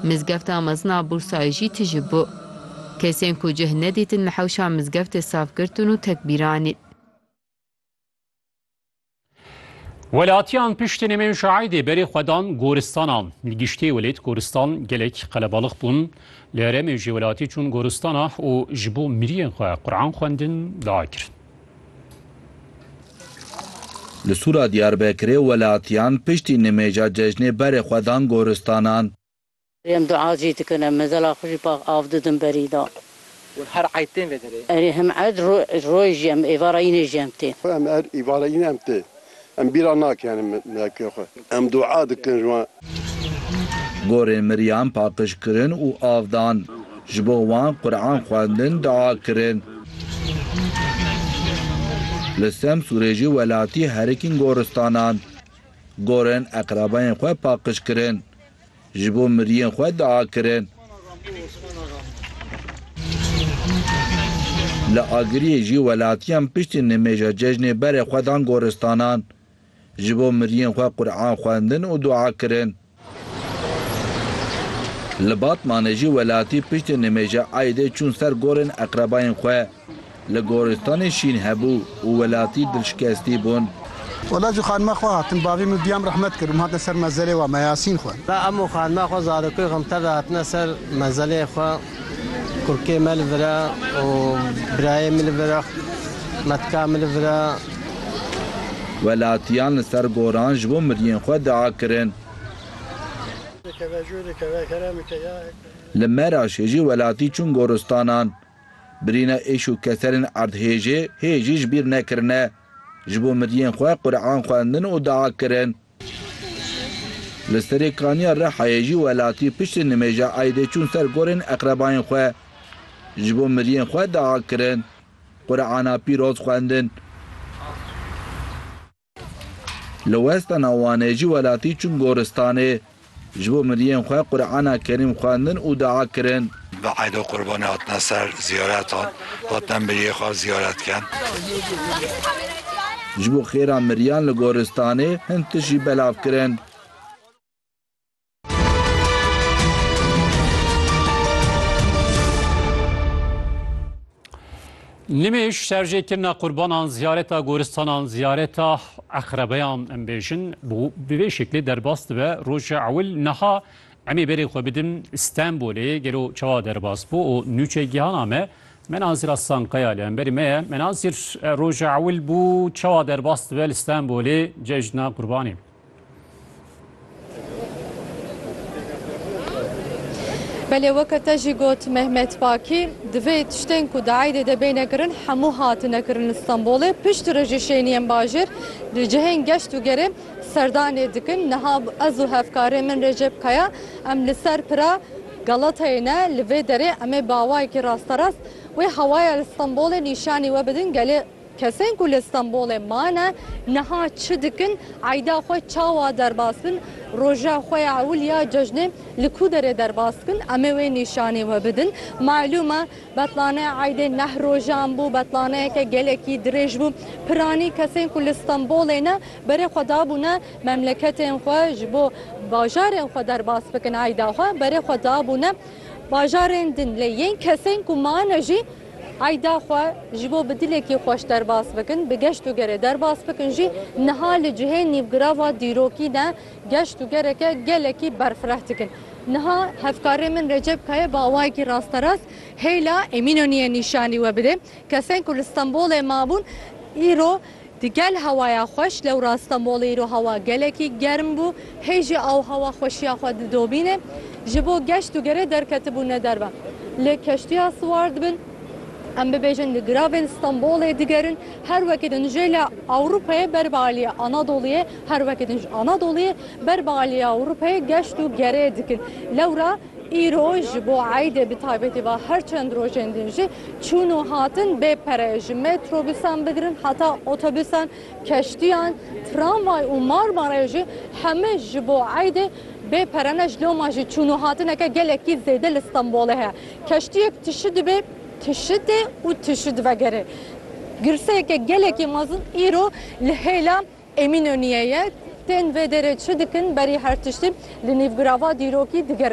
Mizgefta mezin a Bursayê jî tije bû. Kesên ku cih nedîtin li hewşa mizgeftê saf girtin û tek bîranîn. Welatiyan piştî nemên şaîdê berê xwe dan goristana. Li giştî welêt goristan gelek qelebalix bûn. Li herêmê jî welatî çûn goristana û ji bo miriyên xwe Quran xwendin dakirin. Li Sûra Diyarbekirê welatiyan piştî nimêja cejnê berê xwe dan goristanan. Em dua jî dikin, em mezela xwe jî pax av didin berî da. Wan her eyd tên vê derê? Erê hem eyd, roy jî em êvara înê jî em tê. Xwe em er êvara înê em tê. Em bîra nakin meke xwe. Em dua dikin ji wan. Gorên miriyan paqij kirin û av dan. Ji bo wan Quran xwendin dua kirin. Li Semsûrê jî welatî herikîn goristanan. Gorên eqrebayên xwe paqij kirin. Ji bo miriyên xwe dua kirin. Li Agiriyê jî welatiyan piştî nimêja cejnê berê xwe dan goristanan. Ji bo miriyên xwe Quran xwendin û dua kirin. Li Batmanê jî welatî piştî nimêja Eidê çûn ser gorên eqrebayên xwe. Li goristanê şîn hebû û welatî dilşikestî bûn. Wela ji xanima xwe hatin. Bavê min diyam rehmet kir û min hatine ser mezelê wan me Yasîn xwe. Wela em û xanima xwe zarokê û xemtevê hatine ser mezelê xwe. Kurkê me li vir e û birayê min li vir e, metka min li vir e. Welatiyan li ser goran ji bo miriyên xwe dua kirin. Li Meraşê jî welatî çûn goristanan. Birîna êş û keserên erdhêjê hê jî ji bîr nekirine. Ji bo miriyên xwe Qurean xwendin û dua kirin. Li serê kaniya Rihayê jî welatî piştî nimêja Eîdê çûn ser gorên eqrebayên xwe. Ji bo miriyên xwe dua kirin. Qureana pîroz xwendin. Li Westana Wanê jî welatî çûn goristanê. Ji bo miriyên xwe Qur'ana Kerîm xwendin û dua kirin. Bi eyd û qurbanê hatine ser ziyaretan, hatine miriyê xwe ziyaret kirin. Ji bo xêra miriyan li goristanê hin tişt jî belav kirin. Nimêş şerjêkirina qurbanan ziyareta goristanan ziyareta eqrebeyan em bêjin bi vê şeklê derbas dibe roja ewil niha emê berê xwe bidin Stenbolê gelo çawa derbas bû û nûçe gihana me Menazir Aslankaya li emberî me ye Menazir roja ewil bû çawa derbas dibe li Stenbolê cejna qurbanê. Belê weke te jî got Mehmet Pakî, divê tiştên ku di eydê de bêne kirin hemû hatine kirin li Stenbolê. Pişt re jî şêniyên bajêr di cihên geşt û gerê serdanê dikin. Niha ez û hevkarê min Recep Kaya em li ser pira Galatayê ne. Li vê derê em ê bi awayekî rasterast wê hewaya li Stenbolê nîşanî we bidin gelê. Kesên ku li Stenbolê mane niha çi dikin, eyda xwe çawa derbas bin, roja xwe ya ewil ya cejnê li ku derê derbas dikin, em ê wê nîşanî we bidin. Malûm e betlaneya eydê neh rojan bû, betlaneyeke gelekî dirêj bû. Piranî kesên ku li Stenbolê ne berê xwe dabûne memleketên xwe ji bo bajarên xwe derbas bikin, eyda xwe berê xwe dabûne bajarên din. Lê yên kesên ku mane jî. Eyda xwe ji bo bi dilekî xweş derbas bikin, bi geşt û gerê derbas bikin jî niha li cihê nîvgirava dîrokî de geşt û gereke gelekî berfireh dikin. Niha hevkarê min Recep Kaya bi awayekî rasterast hêla Emînonîyê nîşanî we bide. Kesên ku li Stenbolê mabûn îro Di gel hewaya xweş lewra Stenbolê îro hewa gelekî germ bû, hê jî aw hewa xweşiya xwe didobîne. Ji bo geşt û gerê derketibûne derve li keştiya siwar dibin. Em bibêjin li giravên Stenbolê digerin, her wekî din jê li Ewropayê ber bi aliyê Anadoluyê, her wekî din ji Anadoluyê ber bi aliyê Ewropayê geşt û gerê dikin. Lewra. Îro ji bo eydê bi taybetî va her çend rojên din jî çûn û hatin bê pere ji metrobûsan bigirin heta otobûsan, keştiyan, tramvay û Marmarayê jî hemû ji bo eydê bê pere ne ji loma jî çûn û hatineke gelekî zêde li Stenbolê heye. Keştiyek tişû dibê, tişû tê û tişû divegerê. Girseyeke gelekî mezin îro li hêla Emînoniyê ye. Tên vê derê çi dikin berî her tiştî li nîvgirava dîrokî digerin.